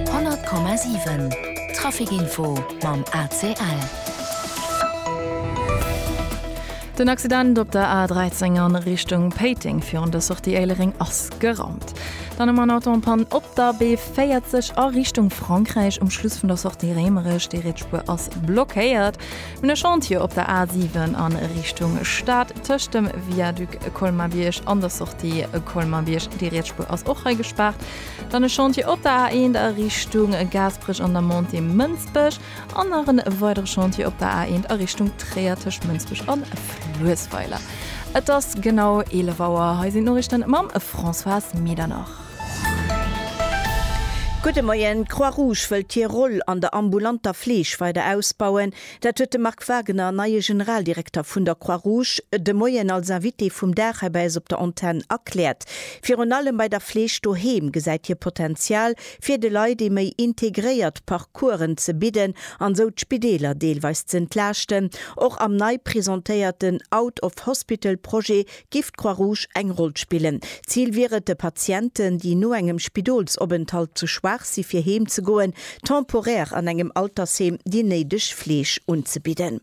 100,7 Trafic Info mam ACL. Den Accident op der A13 an Richtung Péiteng virun der Sortie Éilereng ass geraumt. Dann ëmmer en Autopann op der B40 a Richtung Frankräich um Schluss vun der Sortie Rémerech. Déi riets Spuer ass blockéiert un e Chantier op der A7 an Richtung Stad tëscht dem Viaduc Colmar-Bierg an der Sortie Colmar-Bierg. Déi riets Spuer ass och hei gespaart. Dann e Chantier op der A1 a Richtung Gaasperech an der Montée Mënsbech an nach e weidere Chantier op der A1 a Richtung Tréier tëscht Mënsbech an Fluessweiler. Et ass genau 11 Auer. Hei sinn d'Noriichten mam Françoise Medernach. Gudde Moien, D'Croix-Rouge wëllt hir Roll an der ambulanter Fleeg weider ausbauen. Dat huet de Marc Wagener, neie Generaldirekter vun der Croix Rouge, de Moien als Invité vum Dag hei bei eis op der Antenn erkläert. Virun allem bei der Fleeg doheem gesäit hie Potenzial, fir de Leit ee méi integréiert Parcoursen ze bidden an esou d'Spideeler deelweis z'entlaaschten. Och am nei presentéierten Out-of-Hospital-Projet Giff d'Croix Rouge eng Roll spillen? D'Zil wier et de Patienten, déi no engem Spidolsopenthalt ze schwaach si fir heem ze goen, temporär an engem Altersheem déi néideg Fleeg unzebidden.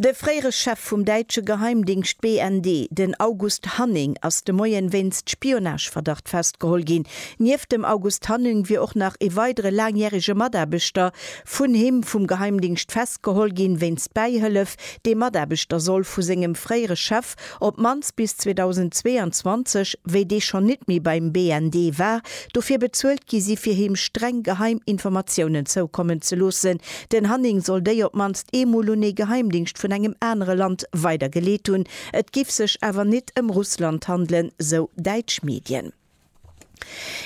De fréiere Chef vum däitsche Geheimdingscht BND, den August Hanning, ass de Moien wéinst Spionageverdacht festgeholl ginn. Nieft dem August Hanning wier och nach ee weidere laangjärege Mataarbechter vun him vum Geheimdingscht festgeholl ginn, wéinst Bäihëllef, dee Mataarbechter soll vu sengem fréiere Chef, op d'mannst bis 2022, wéi dee schonn nit méi beim BND war, dofir bezuelt gi si fir him streng geheim Informatiounen zoukommen ze loossen. Den Hanning soll déi op d'mannst eemol un ee Geheimdingscht vun engem anere Land weidergeleet hunn. Et giff sech awer nit ëm Russland handelen, sou däitsch Medien.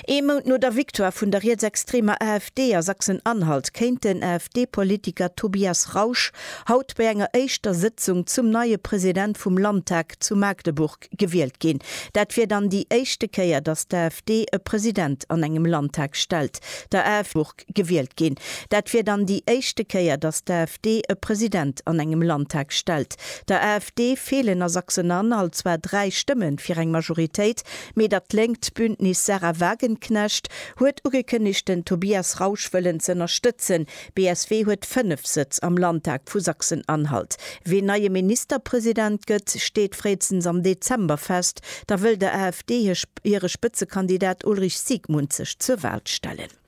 Ee Mount no der Victoire vun der rietsextremer AfD a Sachsen-Anhalt kéint den AfD-Politiker Tobias Rausch haut bei enger éischter Sëtzung zum neie President vum Landtag zu Magdeburg gewielt ginn. Dat wier dann déi éischte Kéier, datt d'AfD e President an engem Landtag stellt. Der AfD. gewielt ginn. Dat wier dann déi éischte Kéier, datt d'AfD e President an engem Landtag stellt. Der AfD feelen a Sachsen-Anhalt zwar dräi Stëmme fir eng Majoritéit, mee dat lénkt Bündnis Sahra Wagenknecht huet ugekënnegt, den Tobias Rausch wëllen z'ënnerstëtzen. BSW huet fënnef Sëtz am Landtag vu Sachsen-Anhalt. Wien neie Ministerpresident gëtt, steet fréistens am Dezember fest. Da wëll der AfD hire Spëtzekandidat Ulrich Siegmund sech zur Wal stellen.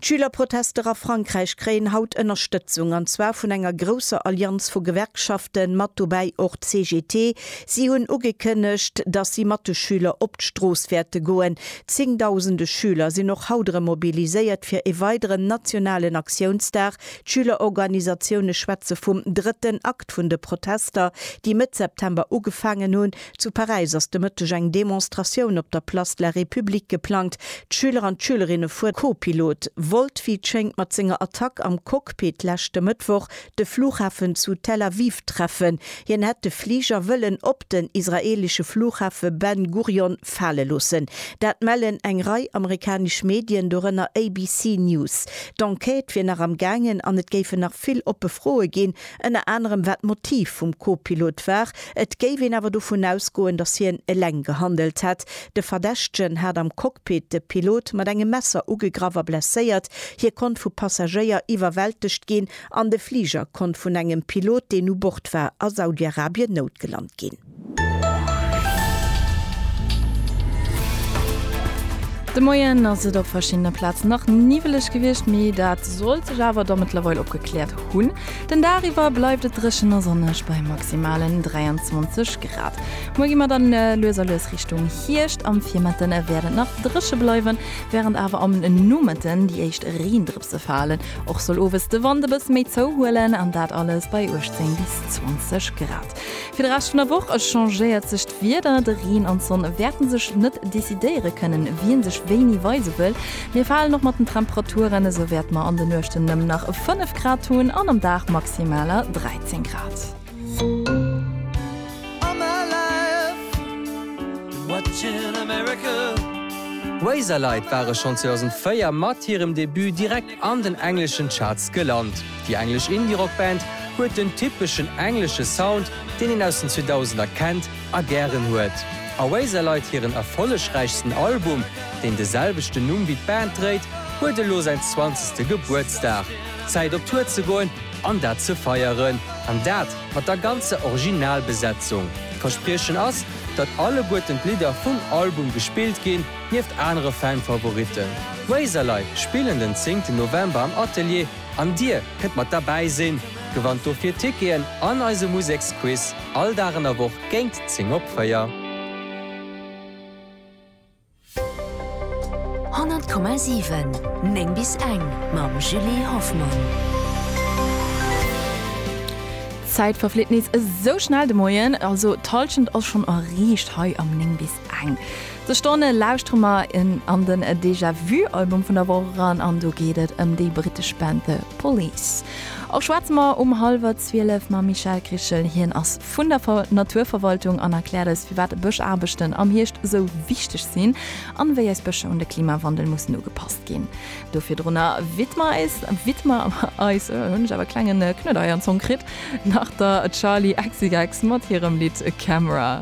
D'Schülerprotester a Frankräich kréien haut Ënnerstëtzung, an zwar vun enger grousser Allianz vu Gewerkschaften, mat dobäi och d'CGT. Si hunn ugekënnegt, datt si mat de Schüler op d'Strooss wäerte goen. Zéngdausende Schüler sinn och haut erëm mobiliséiert fir e weideren nationalen Aktiounsdag. D'Schülerorganisatioune schwätze vum drëtten Akt vun de Protester, déi Mëtt September ugefaangen hunn. Zu Paräis ass de Mëtteg eng Demonstratioun op der Place de la République geplangt. D'Schüler an d'Schülerinne vue Co-Pilot wollt, wéi et schéngt, mat senger Attack am Cockpit leschte Mëttwoch de Flughafen zu Tel Aviv treffen. Hien hätt de Fliger wëllen op den israeelesche Flughafe Ben Gurion fale loossen. Dat mellen eng Rei amerikanesch Medien, dorënner ABC News. D'Enquête wier nach am gaangen an et géifen nach vill oppe Froe ginn, Ënner anerem wat d'Motiv vum Co-Pilot war. Et géif een awer dovun ausgoen, datt hien eleng gehandelt hätt. De Verdächtegen hat am Cockpit de Pilot mat engem Messer ugegraff a blesséiert. Hie konnt vu Passagéier iwwerwältegt ginn an de Fliger konnt vun engem Pilot, deen u Bord war, a Saudi-Arabien noutgelant ginn. De Moien ass et op verschiddene Plazen nach niwweleg gewiescht, mee dat sollt sech awer da mëttlerweil opgekläert hunn. Den Dag iwwer bleift et dréchen a sonneg bei maximalen 23 Grad. Muer gi mer dann lues a lues Richtung Hierscht. Am Virmëtte wäert et nach dréche bleiwen, wärend awer am Nomëtten déi éischt Reendrëpse falen. Och soll owes de Wand e bësse méi zouhuelen an dat alles bei 18 bis 20 Grad. Fir de Rescht vun der Woch changéiert sech d'Wieder, de Reen an d'Sonn wäerten sech net decidéiere kënnen, wien sech wéini weise wëll. Mir falen och mat den Temperaturen, esou wäerte mer an de Nuechten nëmmen nach 5 Grad hunn an am Dag maximaler 13 Grad. D'Razorlite ware schonn 2004 mat hirem Debut direkt an den engleschen Charts gelant. Déi englesch Indie-Rock-Band huet den typeschen englesche Sound, deen een aus den 2000er kennt a gären huet. Oasis leit hiren erfollegräichsten Album, deen de selwechten Numm wéi d'Band dréit, huet elo säin zwanzegste Gebuertsdag. Zäit op Tour ze goen an dat ze feieren. An dat mat der ganzer Originalbesetzung. D'Verspriechen ass, datt alleguerten d'Lidder vum Album gespillt ginn. Nieft anere Fan-Favoritten, Razorlight spillen den 10 November am Atelier an dir kënnt mat derbäi sinn. Gewannt dofir Ticketen an eise Museksquiz all Dag an der Woch géint 10 op 4. Honnert Komma siwen, néng bis eng mam Julie Hoffmann. D'Zäit verflitt nees esou schnell de Moien, also d'Hallschent ass schonn erreecht hei am 9 bis Eng sech Stonne lauschtere mer en an den Déjà Vu Album vun der Woch eran an do geet et ëm déi brittesch Band The Police. Och schwätze mer um hallwer 12 mam Michel Krichel, hien ass vun der Naturverwaltung an erkläert eis firwat Bëschaarbechten am Hierscht sou wichteg sinn an wéi eis Bëscher un de Klimawandel mussen ugepasst ginn. Do virdrunner widmer eis, widmer eis, hunn ech awer e klengen Knuedeier an Zong kritt, nach der Charli XCX mat hirem Lidd Camera.